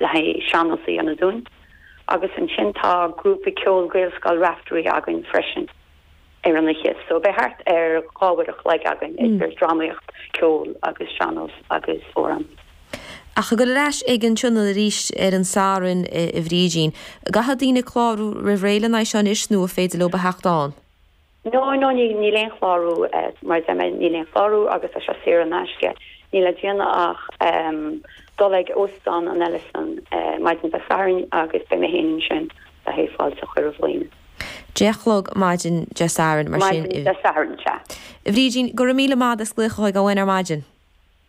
le haghaidh sean-nós a dhéanamh dúinn agus ansin tá grúpa ceoil Gaelscoil Raifteirí againn freisin ar an oíche so beidh thart ar dhá uair a chloig againn idir dramaíocht, ceol agus sean-nós agus amhrán. Ach ag dul ar ais ag an tionól arís ar an Satharn a Bhrídín, an gcaithfidh daoine clárú roimh ré lena aghaidh seo anois nó an féidir leob a theacht ann? No, no, níl aon chlárú, mar a deir mé, níl aon chlárú agus tá sé saor in aisce. Níl le déanamh ach dul ag Óstán an Ellison maidin Dé Sathairn agus beidh mé féin ansin le haghaidh fáilte a chur roimh dhaoine. Deich a chlog maidin Dé Sathairn, mar sin? Maidin Dé Sathairn, sea. Bhrídín, go raibh míle maith agat as glaoch chugainn ar maidin.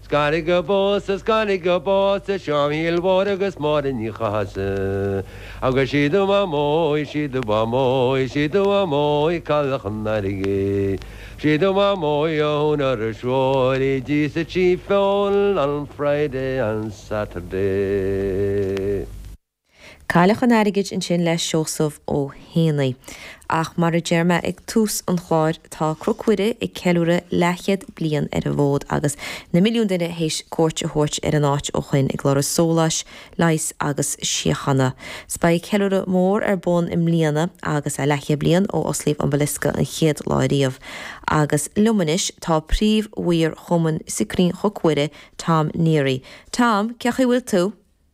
Is gairid go bpósfa, is gairid go bpósfa, Seán Mhichíl Mhóir agus Máire Ní Chathasaigh. Agus sí do Mhaimeo í, sí do Mhaimeo í, sí do Mhaimeo í, Cailleach an Airgid. Sí do Mhaimeo í a shúnn ar a threoir í, D'íosfadh sí feoil on Friday and Saturday. Cailleach an Airgid ansin le Seosamh Ó hÉanaí. Ach mar a deir mé ag tús an chláir, tá Cnoc Mhuire ag ceiliúradh leathchéad bliain ar an bhfód agus na milliúin duine théis cuairt a thabhairt ar an áit ó shoin ag lorg sóláis, leighis agus síochána. 'S beidh ceiliúradh mór ar bun i mbliana agus é leathchéad bliain ó osclaíodh an Basilica an chéad lá ariamh. Agus liom anois tá príomh-mhaor Chumann Scrín Chnoc Mhuire, Tom Neary. Tom, cén chaoi a bhfuil tú?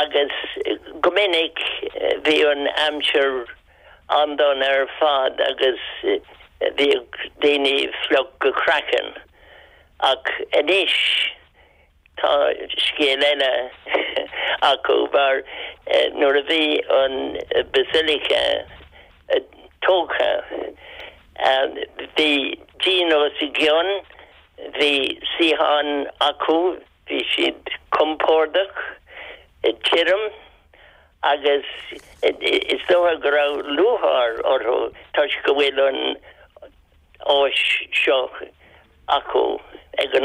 agus go minic bhí an aimsir an-dona ar fad agus bhíodh daoine fliuch go craiceann ach anois tá scéal eile acu mar nuair a bhí an Basilica tógtha bhí díon os a gcionn, bhí suíocháin acu. Bhí siad compordach tirim agus is dócha go raibh lúcháir orthu toisc go bhfuil an áis seo acu ag an